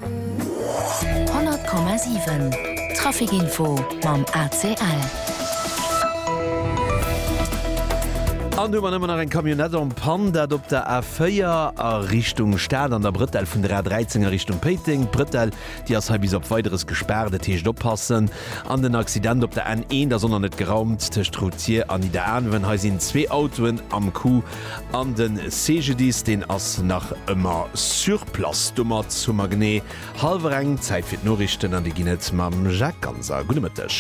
100,7 Trafic Info mam ACL. An hu mer ëmmer nach eng Camionette en panne, dat op der A4 a Richtung Stad an der Brëtell vun der A13 a Richtung Péiteng. D'Brëtell, déi ass hei bis op Weideres gespaart, dat heescht oppassen. An den Accident op der N1, da soll nach net geraumt, tëscht Routier an Nidderaanwen. Hei sinn zwee Autoen am Coup. An den CGDIS deen ass nach ëmmer sur place. Domat hu mer genee halwer eng. Zäit fir d'Noriichten an déi ginn et mam Jacques Ganser. Gudde Mëtteg.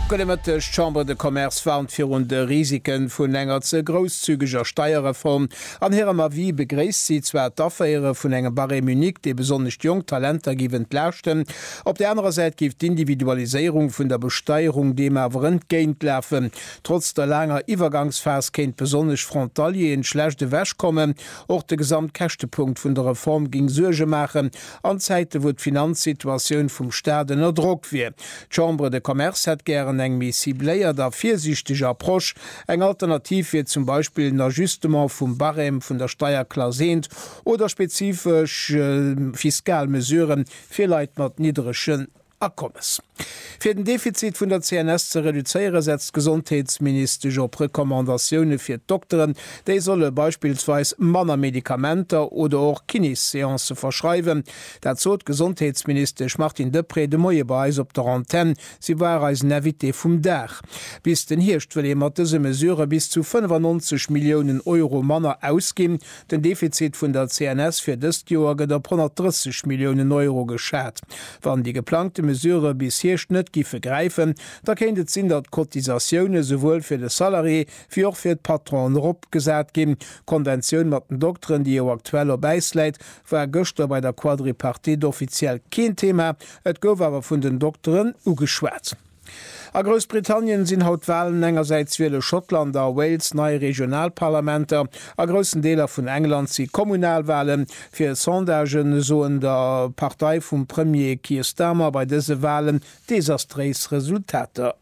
Gudde Mëtteg. D'Chambre de Commerce warnt virun de Risike vun enger ze grousszügeger Steierreform. An hirem Avis begréisst si zwar d'Aféiere vun engem Barème unique, dee besonnesch d'jonk Talenter géif entlaaschten. Op där anerer Säit géif d'Individualiséierung vun der Besteierung deem awer entgéintlafen. Trotz der laanger Iwwergangsphas kéint besonnesch Frontalieren schlecht ewech kommen. Och de Gesamtkäschtepunkt vun der Reform géing Suerge maachen, an Zäite wou d'Finanzsituatioun vum Staat ënner Drock wier. D'Chambre de Commerce hätt gären eng méi cibléiert a virsiichteg Approche. Eng Alternativ wier zum Beispill en Ajustement vum Barème vun der Steierklass 1 oder spezifesch fiskal Mesurë fir Leit mat niddrege. Akommes. Fir den Defizit vun der CNS ze reduzéiere setzt d'Gesondheetsministesch op Recommandatioune fir d'Dokteren, déi solle beispillsweis manner Medikamenter oder och Kinéseancë verschreiwen. Dat sot d'Gesondheetsministesch Martine Deprez de Moie bei eis op der Antenn. Si war eisen Invité vum Dag. Bis den Hierscht wëll ee mat dëse Mesurë bis zu 95 Milliounen Euro manner ausginn. Den Defizit vun der CNS fir dëst Joer gëtt op 130 Milliounen Euro geschat. Wann déi geplangte Mesurë bis Hierscht net giffe gräifen, da kéint et sinn, datt d'Cotisatioune souwuel fir de Salarié wéi och fir d'Patronen eropgesat ginn. D'Konventioun mat den Dokteren, déi jo aktuell op Äis läit, war gëschter bei der Quadripartite offiziell keen Thema. Et gouf awer vun den Dokteren ugeschwat. A Groussbritannien sinn haut d'Walen, engersäits wiele Schottland a Wales nei Regionalparlamenter, a groussen Deeler vun England si Kommunalwalen. Fir Sondagen soen der Partei vum Premier Keir Starmer bei dëse Walen desastréis Resultater.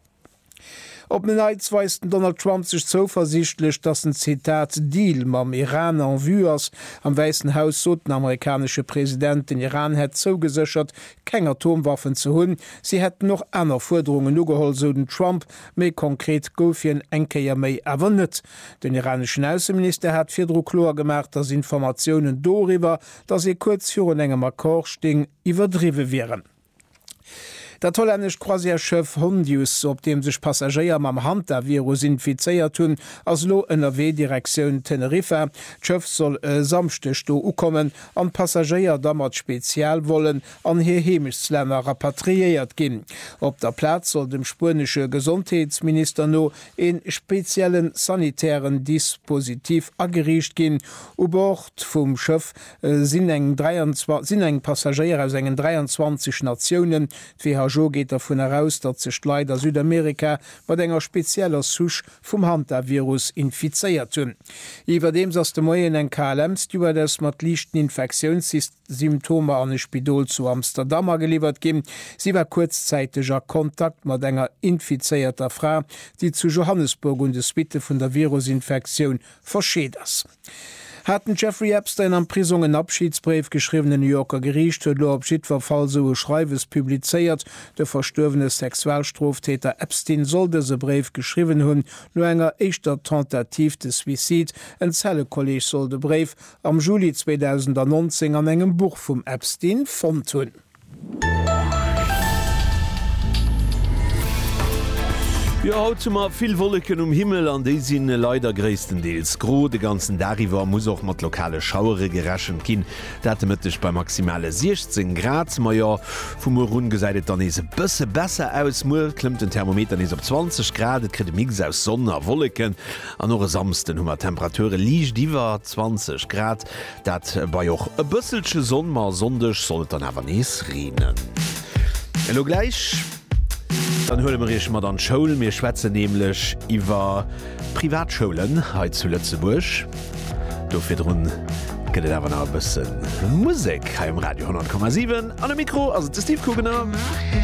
Op en Neits weist den Donald Trump sech zouversiichtlech, datt en Zitat Deal mam Iran en vue ass. Am Wäissen Haus sot den amerikanesche President, den Iran hätt zougeséchert keng Atomwaffen ze hunn. Si hätten och aner Fuerderungen ugeholl, sou den Trump, mee konkret gouf hien eng Kéier méi awer net. Den iraneschen Ausseminister hat virdru kloer gemaach, datt Informatiounen doriwwer, datt ee kuerz virun engem Accord sting, iwwerdriwwe wieren. Dat hollännescht Croisièresschëff Hondius, op deem sech Passagéier mam Hantavirus infizéiert hunn, ass elo ënnerwee Direktioun Teneriffa. D'Schëff soll e Samschdeg do ukommen. an d'Passagéier da mat Spezialvollen an hir Heemechtslänner rapatriéiert ginn. Op der Plaz soll dem spuenesche Gesondheetsminister no ee speziellen sanitären Dispositif ageriicht ginn. U Bord vum Schëff sinn eng 23 sinn eng Passagéier aus engen 23 Natiounen. D'WHO geet dervun eraus, datt sech d'Leit a Südamerika mat enger spezieller Souche vum Hantavirus infizéiert hunn. Iwwerdeems ass de Moien eng KLM-Stewardess mat liichten Infektiounssymptomer an e Spidol zu Amsterdam ageliwwert ginn. Si war kuerzzäiteg a Kontakt mat enger infizéierter Fra, déi zu Johannesburg un de Suitte vun der Virusinfektioun Verscheet ass, hat den Jeffrey Epstein am Prisong en Abschidsbréif geschriwwen. E New Yorker Geriicht huet elo op jiddwer Fall esou e Schreiwes publizéiert. De verstuerwene Sexualstroftäter Epstein soll dëse Bréif geschriwwen hunn, no enger éischter Tentative de suicide. En Zellekolleeg soll de Bréif am Juli 2019 an engem Buch vum Epstein fonnt hunn. Jo, haut hu mer vill Wolleken um Himmel an déi si leider gréisstendeels gro. De ganzen Dag iwwer muss och mat lokale Schauere gerechent ginn, dat de Mëtteg bei maximale 16 Grad. Ma jo, vu muer un gesäit et dann nees e bësse besser aus. Muer klëmmt den Thermometer nees op 20 Grad, et kritt e Mix aus Sonn a Wolleken an och e Samsden hu mer Temperature liicht iwwer 20 Grad. Dat bei och e bësselche Sonn, ma Sonndeg soll et dann awer nees reenen. Elo gläich dann huele mer Iech mat an d'Schoul. Mir schwätzen nämlech iwwer Privatschoulen hei zu Lëtzebuerg. Do virdrun gëtt et awer nach e bësse Musek hei um Radio 100,7. An um Mikro ass et de Steve Kugener.